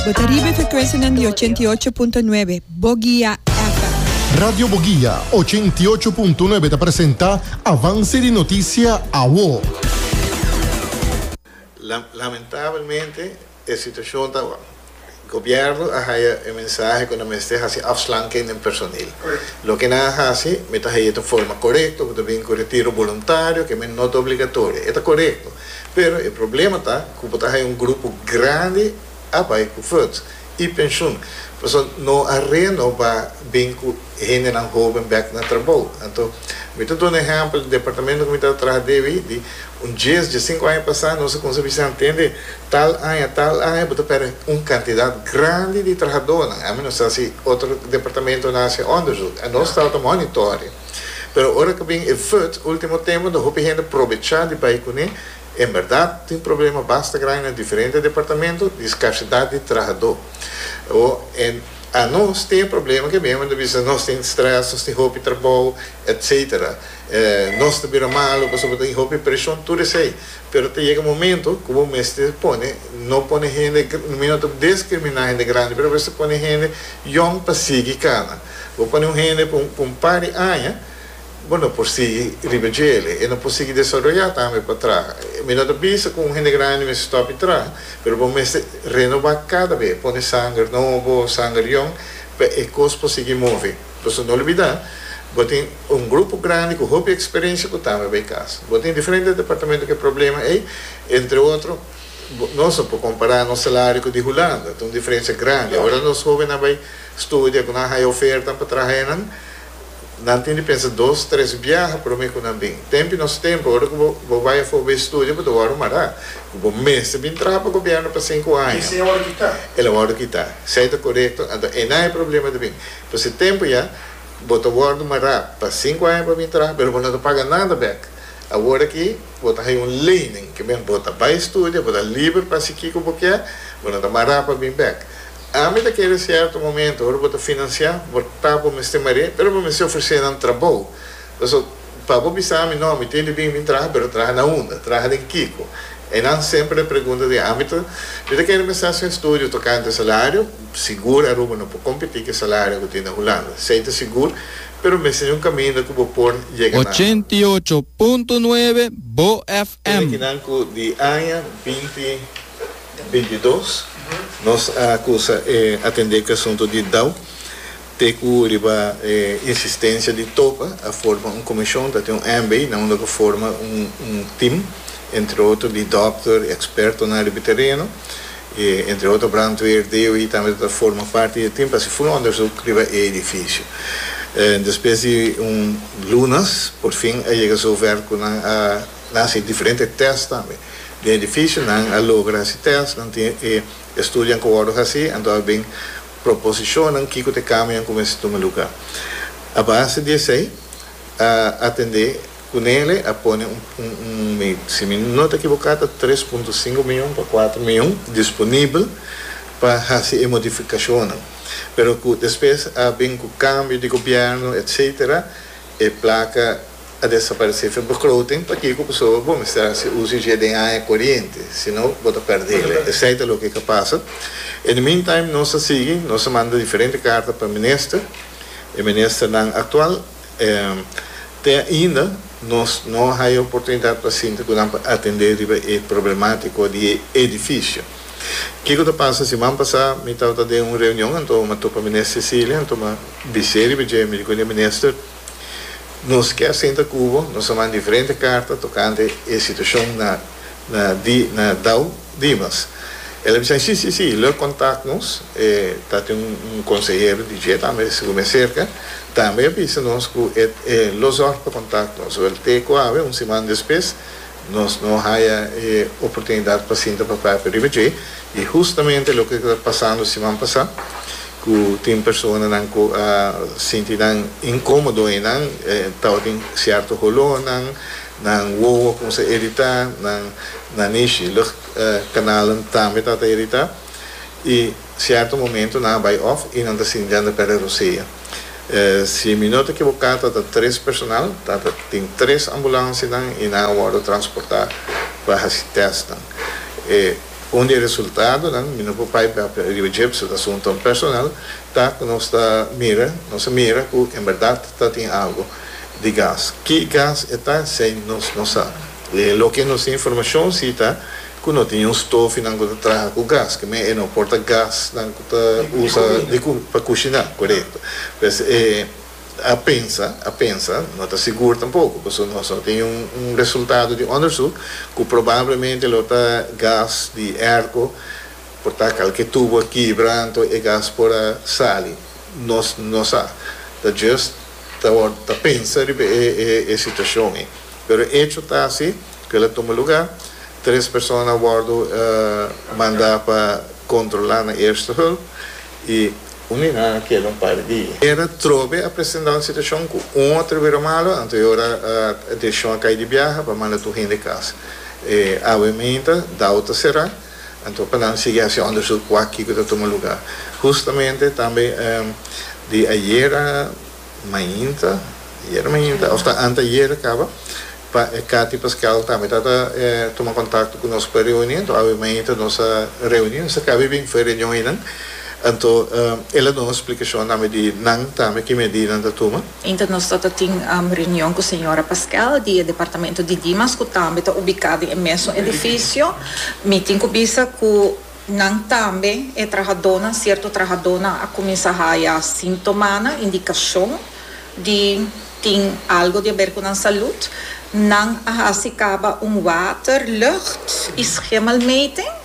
Bo ta riba e frekwensianan di ochenta i ocho punto nuebe Bogia FM. Radio Bogia ochenta i ocho punto nuebe ta presenta Avance di Noticia Awo. Lamentabelmente e situacion ta awor. Gobierno a haya e mensahe cu nan mester haci afslanking den personeel. Loke nan a haci mi ta haya ta forma corecto, bo ta bin cu retiro boluntario, ke men no ta obligatorio. E ta corecto. Pero e problema ta cu bo ta haya un grupo grandi a bay cu verd y pensioen. Pasobra no a reno ba bin cu hendenan hoben bek na trabao. Anto mi ta duna ehempel di departamento cu mi ta traha debe di un dies, diecisinco aña pasa nos a cuminsa bisa ntende tal aña, tal aña bo ta perde un cantidad grandi di trahadornan. Ami no sa si otro departamentonan a haci onderzoek. Nos tabata monitorea. Pero ora cu bin e verd ultimo tempo ta hopi hende probecha di bay cune. En berdad tin problema basta grandi na diferente departamento di scarcidad di trahador. O en a nos tin e problema ke mihandi bisa nos tin stress, nos tin hopi trabao, etc. Nos ta bira malo pasobra tin hopi presion, tur esey. Pero ta yega momento cu bo mester pone, no pone hende, mi no ta descrimina hende grandi, pero bo mester pone hende yong pa sigui cana. Bo pone un hende pa un par di aña, bo no por sigui riba dje el, e no por sigui desaroyá tambe pa traha. Mi no ta bisa ku un hende grandi mester stòp di traha, pero bo mester renobá kada be, pone sanger nobo, sanger yòn, pa e kos por sigui move. Pasobra no olbidá, bo tin un grupo grandi ku hopi eksperensia ku tambe bai kasa. Bo tin diferente departamentu ku e problema ei, entre otro, nos no por kompará nos salario ku di Hulanda, ta un diferensia grandi. Ora nos hóbennan bai Studia ku nan haya oferta pa traha enan. Nan tin di pensa dos, tres biaha promé ku nan bin. Tempi nos tempu, ora ku bo bai afó bo e studia, bo ta wòrdu mará ku bo mester bin traha pa gobièrnu pa sinku aña. Esei a wòrdu kitá. El a wòrdu kitá. Esei ta korekto. Anto einan e problema ta bin. Pues e tempu ya, bo ta wòrdu mará pa sinku aña pa bin traha, pero bo no ta paga nada bèk. Awor aki, bo ta haya un leining. Ke men, bo ta bai studia, bo ta liber pa hasi kiko bo kier, bo no ta mará pa bin bèk. Ami ta kere sierto momento ora bo ta financia bo ta bo mester mar'é pero bo mester ofrece nan trabou paso pa bo bisa ami no mi tin di bin bin traha pero traha na unda traha den kico e nan semper ta pregunta di ami ta mi ta kere mester haci un estudio tocante salario sigur Aruba no por competi cu e salario cu tin na Hulanda sey ta sigur pero mester tin un caminda cu bo por yega na. Ochenta i ocho punto nuebe Bo FM. Esaki nan cu di aña binti. bintidos nos a cusa e atende cu asunto di dau te cu riba e insistencia di Topa a forma un comision ta tin un ambi nan unda cu forma un team entre otro di dokter y expertonan riba e tereno y entre otro brandweer deo y tambe ta forma parti di e team pa haci full onderzoek riba e edificio despues di un lunas porfin a yega zover cu nan a Nan a hasi diferente tèst tambe. Den edifisio nan a logra hasi tèst, nan tin e estudionan ku wòrdu hasi, anto a bin proposishonnan kiko ta e kambionan ku mester tuma lugá. A base di esei a atendé ku Nele a pone un un mi si mi no ta ekiboká ta tres punto sinku mion pa kuater mion disponibel pa hasi e modifikashonnan pero ku despues a bin ku kambio di gobièrnu etsetera e plaka a desaparesé fin bo clothing pakiko pasobra bo mester haci uso dje den aña coriente sino bo ta perdele esai ta loke ka pasa in the mean time nos a sigui nos a manda diferente carta pa minister e minister nan actual te ainda nos no a haya oportunidad pa sinta cu nan pa atende riba e problematico di e edificio kico ta pasa siman pasa mi tabata den un reunion anto mi a topa minister Cecilia anto mi a bisé riba dje mi di cuenta di minister Nos ke a sinta ku bo, nos a manda diferente karta tokante e situashon na na di na Dau Dimas. El a bisa, Si, si, si, lo e kontak nos, e ta tin un un konsehero di dje tambe di Seguro Mia serka, tambe a bisa nos ku e e lo zòrg pa kontak nos. Wèl te ku awe, un siman despes, Nos no haya e oportunidad pa sinta pa prata riba dje y justamente loke ta pasando siman pasa cu tin personanan cu a sinti nan incomodo y nan tawatin cierto holornan, nan wowo a cuminsa irita, nan nanishi lucht canalnan tambe ta ta irita y. Cierto momento nan a bay off y nan ta sinti anda perde rosea. Si mi no ta equivoca ta ta tres personal, ta ta tin tres ambulancia nan y nan a wordo transporta pa haci test nan. E un di e resultado nan, mi no por bay papia riba dje pasobra ta asunto nan personal, ta cu nos ta mira, nos a mira cu en berdad ta tin algo di gas. Ki gas e ta? Sey nos no sa. Loke nos tin informacion si ta. ku no tin un stofinan ku ta traha ku gas ke men e no por ta gasnan ku ta usa pa kushiná korekto pues e a pensa a pensa no ta sigur tampoko pasobra nos no tin un resultado di ondersuk ku probablemente lo ta gas di erko por ta kalke tubo a kibra anto e gas por a sali nos no sa ta just ta pensa riba e situashon ei pero echo ta si. Kil a tuma lugá, tres persona a wòrdu mandá pa kontrolá na Eerste Hulp i un hignan a keda un par di dia. Era trobe a presentá un situashon ku un otro bira malu, anto e ora e desishon a kai di biaha pa manda tur hende kas. E awa i minta dau ta será, anto pa nan sigui hasi òndersuk wak kiko ta tuma lugá. Hustamente tambe di ayera. mainta, ayer mainta of ta anteayer caba, pa e Cathy Pascal tambe ta ta tuma contacto cu nos pa reuni, anto awe mainta nos a reuni, nos a caba bini for e reunion eynan, anto el a duna un splicacion tambe di nan tambe ki medida nan ta tuma. Ainta nos ta ta tin reunion cu señora Pascal di e Departamento di Dimas cu tambe ta ubica den e mesun edificio, mi tin cu bisa cu Nan tambe e trahadónan, sierto trahadónan a kuminsá haya síntomanan, indikashon di tin algo di aber ku nan salud. Nan a hasi kaba un water, lucht i schemelmeting.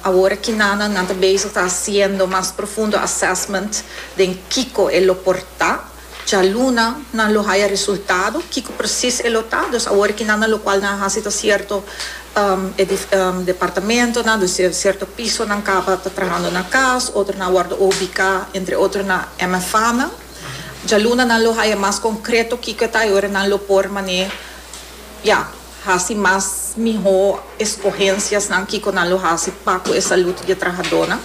Awor Kinana nan ta bezig ta hasiendo mas profundo assessment den kiko e lo por ta. Djaluna nan lo haya resultado? Kico precies e lo ta? Dus awor ki nan na locual nan a haci ta cierto departamentonan, dus cierto pisonan caba ta trahando na cas, otronan a wordo ubica entre otro na MFAnan. Djaluna nan lo haya mas concreto kico e ta y ora nan lo por mane ya. Hasi mas mihó eskohensiasnan kiko nan lo hasi pa ku e salud di e trahadónan.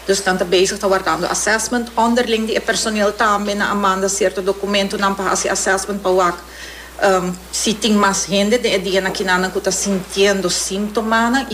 Dus nan ta bezig ta wardando assessment ònderling di e personel tambe. Nan a manda sierto dokumentunan pa hasi assessment pa wak si tin mas hende den e dianan kinan nan ku ta sintiendo símtomanan.